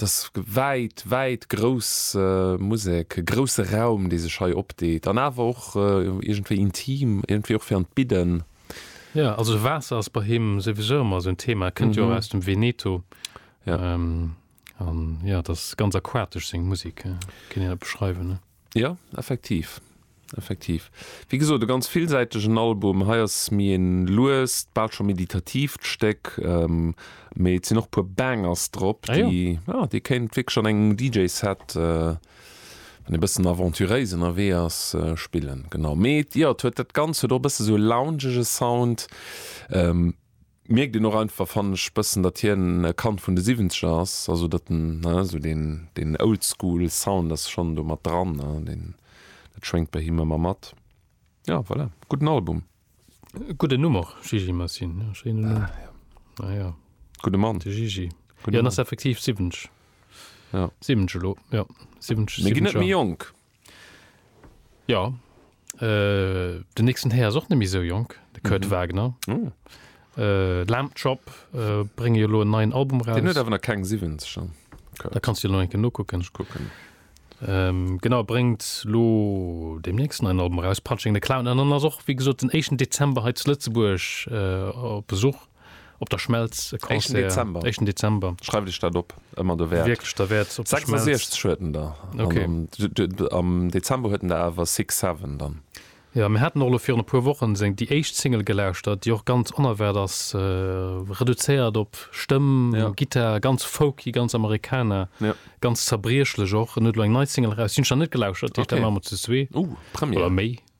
Et ass wäit, wäit grouss Musek, e grousse Raum, dee sech hei opdeet an awer och iergendwéi intim, iergendwéi och fir an d'Bidden. Jo, also Waasser ass bei him souwisou ëmmer esou en Thema. E kënnt jo och aus dem Veneto an jo, et ass ganz aquatesch, seng Musek. Kéint een dat beschreiwen? Jo, effektiv, effektiv. Wéi gesot, e ganz villsäitegen Album. Hei ass méi e luest, bal scho meditatiivt Stéck, mee et sinn och e puer Bangers drop, déi, jo, dee kéint wierklech an engem DJ-Set, wann ee bëssen aventuréis ënnerwee ass, spillen. Genau. Mee, jo, et huet dat Ganzt huet och e bësse sou e loungege Sound. Mierkt een och einfach, fannen ech, bëssen, datt hien e Kand vun de Siwwenzeger ass, also datt en esou deen Old School Sound ass schonn do mat dran, dat schwéngt bei him ëmmer mat. Jo, voilà, gudden Album. Gudden Numm och, Gigi Masin, jo, schéinen Numm. Ah, jo. Ah, jo. Gudde Mann. De Gigi. Jo, en ass effektiv siwwenzeg. Jo. Siwwenzeg elo, jo. Siwwenzeg, siwwenzeg Joer. Mir ginn net méi jonk. Ja, den nächsten Här ass och net méi esou jonk, de Kurt mhm. Wagner. Oh. Äh, Lamp Chop äh, bringe jo lo en neien Album raus. Den huet awer nach keng 7 schon. Okay. Da kannst du lo enke nokucken. Ich kucken. Ähm, genau bringt lo dem nächsten einen Album raus Punching the Clown an dann ass och wie gesot den 1. Dezember he zu Lëtzeburg äh, op Besuch. Op der Schmelz e Concert. Éischten Dezember. Éischten Dezember. Schreift iech dat op, ëmmer derwäert. Wierklech derwäert, op der Schmelz. 66 huet en der. Ok. An am Dezember huet en der awer Six Seven dann. Jo, mir haten och elo virun e puer Wochen seng déi éischt Single gelauschtert, déi och ganz onerwaart ass, reduzéiert op Stëmm, Gittar, ganz folky, ganz Americana, ganz zerbriechlech och. En huet elo eng nei Single eraus, déi hunn ech nach net gelauschtert, déi heescht Dann maache mer ze zwee. Oder méi.